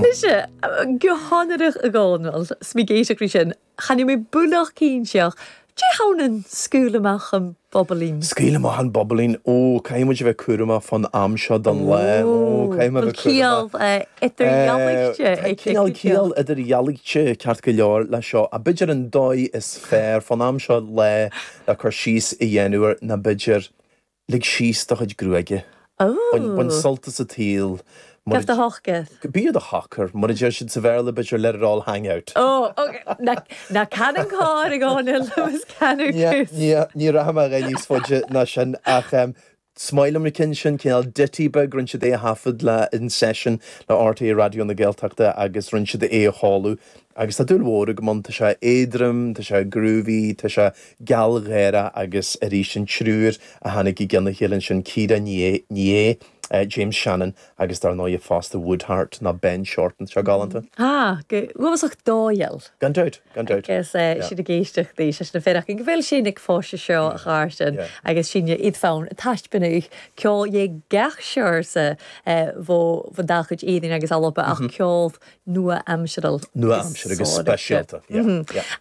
Mise, Gu h-onarach a Dhomhnaill, 's mi ag èisteachd ri sin, chan eil mi buileach cinnteach, Dè th' ann an scaoil amach an bobailín? Scaoil amach an bobailín, Ó, caithfidh muid a bheith cúramach fán am seo don lá, Ó, caithfidh mé a bheith cúramach. Bhuel, ciall idirdhealaithe. Tá cineál ciall idirdhealaithe ceart go leor leis seo, a' b'fhéidir an dóigh is fearr fán am seo lá le cur síos a dhéanamh air ná b'fhéidir, Lig síos do chuid gruaige. Bain sult as an tsaol. Gabh do sháith gaoth. Bí ar do shocair. Mar a deir siad sa Bhéarla, b'fhéidir let it all hang out. Ná can an carr i gconair, Lewis, can ar tús. Ní rachaidh mé i bhfad níos faide ná sin ach is maith liom an ceann sin, cineál ditty beag, rinne siad é a thaifead le An Seisiún le RTÉ Raidió na Gaeltachta agus rinne siad é a sheoladh agus tá dúil mhór agam ann, tá sé éadrom, tá sé groovy, tá sé Gealgháireadh agus arís an triúr a tháinig i gceann a chéile ansin, Ciara Ní É, James Shannon agus dar ndóigh fosta Woodheart ná Ben Shorten. Seo galánta. Tá, go rúmasach dòigheil. Gan dabht, gan dabht. Agus Yeah. sibh ag èisteachd i seisiún a' faireachdainn gu bheil sinn a' fáisceadh seo Yeah, ach ár sin yeah. agus sinn a' feuchainn taisbeanadh ceòl dhe gach seòrsa bho bhon dà chuid Èirinn agus Alba ach ceòl nua-aimseartha nua-aimseartha agus speisialta.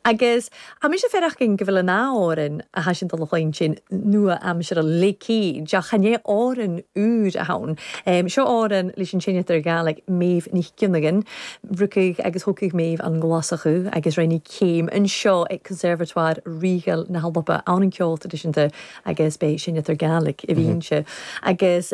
Agus tá mise féin ach go bhfuil an ábhairín a thaitin don chaint sin nua-aimseartha Laochí Deá chan é ábhairín úr a thann. Seo ábhairín leis an seinnteoir Gaelach Méabh Ní Ghionnagain. Rugadh agus thógtha Méabh an nGlasachú agus rinne céim anseo ag Conservatoire Ríoga na hAlban ann an ceol traidisiúnta agus beidh seinnteoir Gaelach i bhfianaise agus.